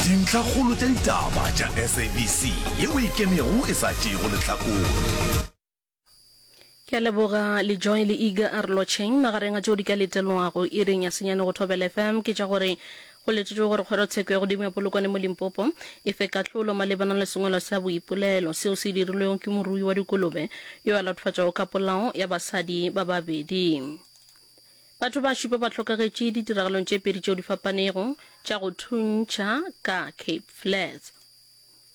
dintlhakgolo tša ditaba tša sabc ye o ikemego e sa tšeego lehlakore ke a leboga lejoy le iga a re lotšheng magareng a tšeo di ka letelwago iring ya senyane go thobela fm ke tša gore go letetšwe gore kgorotsheko ya godimo ya polokwane mo limpopo e fe kahlolo malebana le sengwalo sa boipolelo seo se dirilwego ke morui wa dikolobe yo a latofatšwago ka polao ya basadi ba babedi Batho ba šupa ba hlokagetše ditiragalong tše pedi tšeo di fapanego tša go thuntšha ka Cape Flats.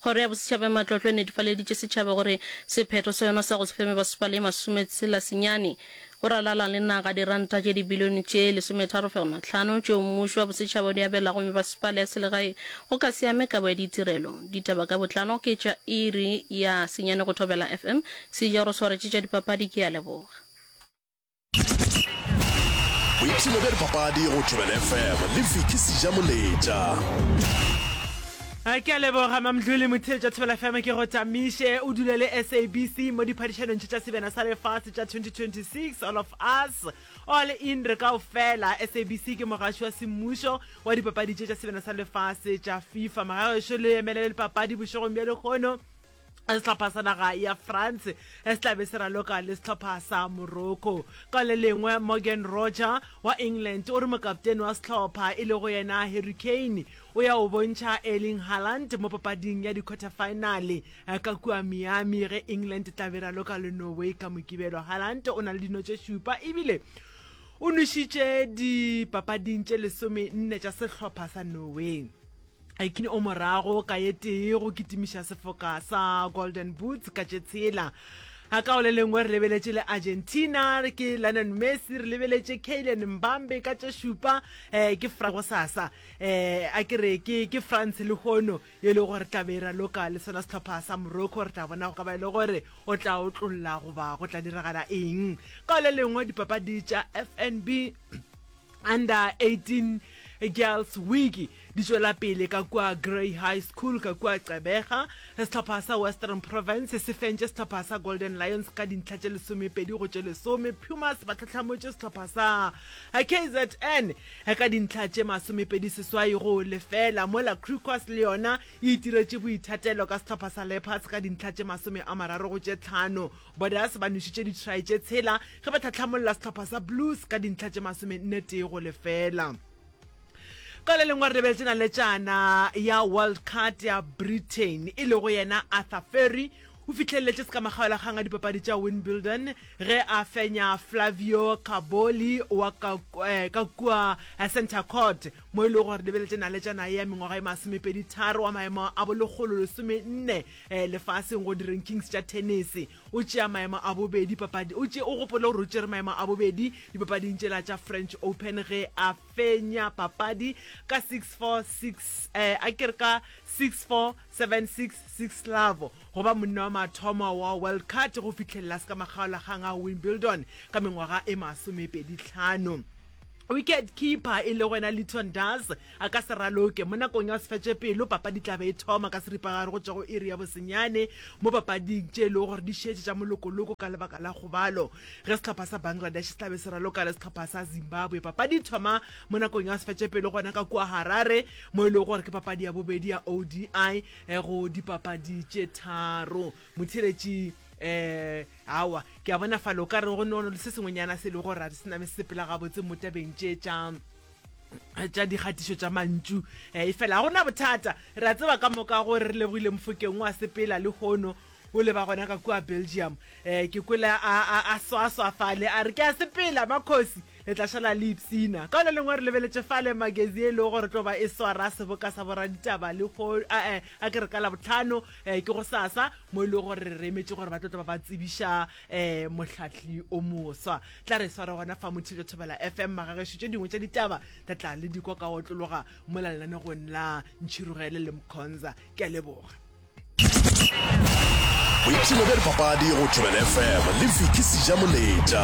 Kgoro ya Bosetšhaba ya Matlotlo e netifaleditše setšhaba gore sephetho sa yona sa go se fe mebasepala ye masometshela senyane go ralala le naga diranta tše dibilione tše lesometharo fegelwa tlhano tšeo mmušo wa bosetšhaba o di abelago mebasepala ya selegae go ka se ame kabo ya ditirelo. Ditaba ka botlalo ke tša iri ya senyane go Thobela FM. Sejoro Swaretše tša dipapadi ke a leboga. boipshino bja dipapadi go thobela fm le fiki seja moletša ke a leboga mamdlo le motheo tša thobela fm ke go tamiše o dule le sabc mo diphadišanong tša sebjana sa lefase tša 2026 all of us all in re kao fela sabc ke mogaši wa semmušo wa dipapadi tše tša sebjana sa lefase tša fifa magaešo le emelele dipapadi bošegong bja lekgono sehlopha sa naga ya france se tlabe se raloka le sehlopha sa morocco ka le lengwe morgan roger wa england o re mokaptene wa sehlopha e lego yena harry kane o ya o bontšha erling haland mo papading ya di-quarter finale eh, ka kua miami ge england e tlabe e raloka le norway ka mokibelo haland o na le dino tše šupa ebile o nwešitše dipapading tše lesome nne tša sehlopha sa norway Aikin o morago ka ye tee go kitimiša sefoka sa Golden Boots ka tše tshela. A ka o le lengwe re lebeletše le Argentina, ke Lionel Messi, re lebeletše Kylian Mbambe ka tše šupa, eh, ke Fra go sasa, eh, a ke re ke, ke France le hono, ye le gore tla be ra loka le sona sehlopha sa Morocco, re tla bona go ka ba e le gore o tla otlolla goba go tla diragala eng. Ka o le lengwe dipapadi tša FNB, Under 18 Girls Week di tšwela pele ka kua Grey High School ka kua Gqeberha. Sehlopha sa Western Province se fentše sehlopha sa Golden Lions ka dintlha tše lesomepedi go tše lesome. Pumas ba tlhatlhamotše sehlopha sa KZN ka dintlha tše masomepedi seswai go lefela, mola Griquas le yona e itiretše boithatelo ka sehlopha sa Leopards ka dintlha tše masome a mararo go tše tlhano. Borders ba nwešitše ditšhrai tše tshela ge ba tlhahlamolla sehlopha sa Blues ka dintlha tše masomenne tee go lefela. Ka le lengwe re lebeletse naletšana ya World Card ya Britain e lego yena Arthur Ferry o fihlelletše sekamagabelakgang a dipapadi tša Wimbledon ge a fenya Flavio Caboli wa ka eh, ka kua eh, Centre Court mo e lego gore lebeletse naletšana ya mengwaga e masomepedi tharo wa maemo a bolekgolo lesomenne um lefaseng go di-rankings tša tennis o tšea maemo a bobedi papadi o tše o gopole gore o tšere maemo a bobedi dipapading tšela tša french open ge a fenya papadi ka 646 um a kere ka 64766 lavo go ba monna wa mathomo wa world card go fitlhelela se ka makgaolakgang a wimbledon ka mengwaga e masomepedi tlhano Wicket keeper e lego yena Lyton Dars a ka se raloke mo nakong ya go se fetše pelo. Papadi e tla be e thoma ka seripagare go tšwa go iri ya bosenyane mo papading tše e lego gore di šetše tša molokoloko ka lebaka la kgobalo ge sehlopha sa Bangladesh se tla be se raloka le sehlopha sa Zimbabwe. Papadi e thoma mo nakong ya go se fetše pelo gona ka kua Harare mo e lego gore ke papadi ya bobedi ya ODI go dipapadi tše tharo. Motheeletši. um awa ke a bona falo ka re go nono le se sengwenyana se le go ra di se name se sepela gabotse mo tabeng tše tša tša dikgatišo tša mantšu um e fela ga gona bothata re a tseba ka moka gore re lebogile mofokeng wa sepela le hono o leba gona ka kua belgium um ke kwele a swaswa fale a re ke a sepela makgosi le tla šala le ipsina ka le lengwe re lebeletse fale magazine e lego gore tlo ba e swara seboka sa boraditaba le go a ke re ka labotlhano um ke go sasa mo e le gore re emetše gore ba tlo tla ba ba tsebiša um mohlahli o moswa tla re sware gona fa mothilo thobela fm magagešo tše dingwe tša ditaba tla tla le dikwa ka otlologa mo la lenanegong la ntšhirogele le mkhonza ke a leboga boipshino bja dipapadi go thobela fm le viki seja moletša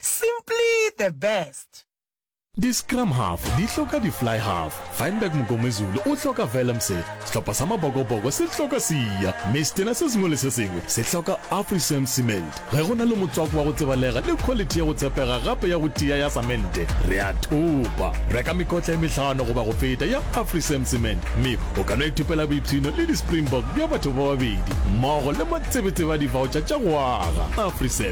Simply the best. Di-scrum half di hloka di-fly half. Feinberg Mngomezulu o hloka Vellemseth, sehlopha sa Mabokoboko se hloka Siya, mme setena se sengwe le se sengwe se hloka Afrisam Cement. Ge go na le motswako wa go tsebalega le khwalithi ya go tshepega gape ya go tia ya samente, re a thopa. Reka mekotla e mehlano goba go feta ya Afrisam Cement, mme o ka no ithopela boipshino le di-Springbok bja batho ba babedi mmogo le matsebetsebe a divaotšha tša go aga. Afrisam.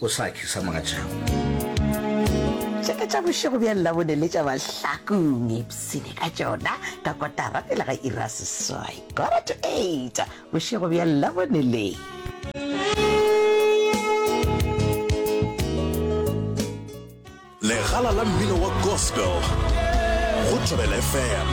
O sa tšhi sa mogatšago. Tšeka tša bošego bja Labone le tša Mahlakong ipshine ka tšona ka kotara pele ga iri ya seswai, quarter to eight, bošego bja Labone le. Legala la mmino wa gospel go Thobela FM.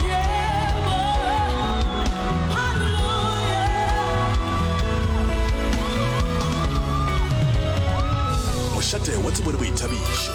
mošate wa tsebo le boithabišo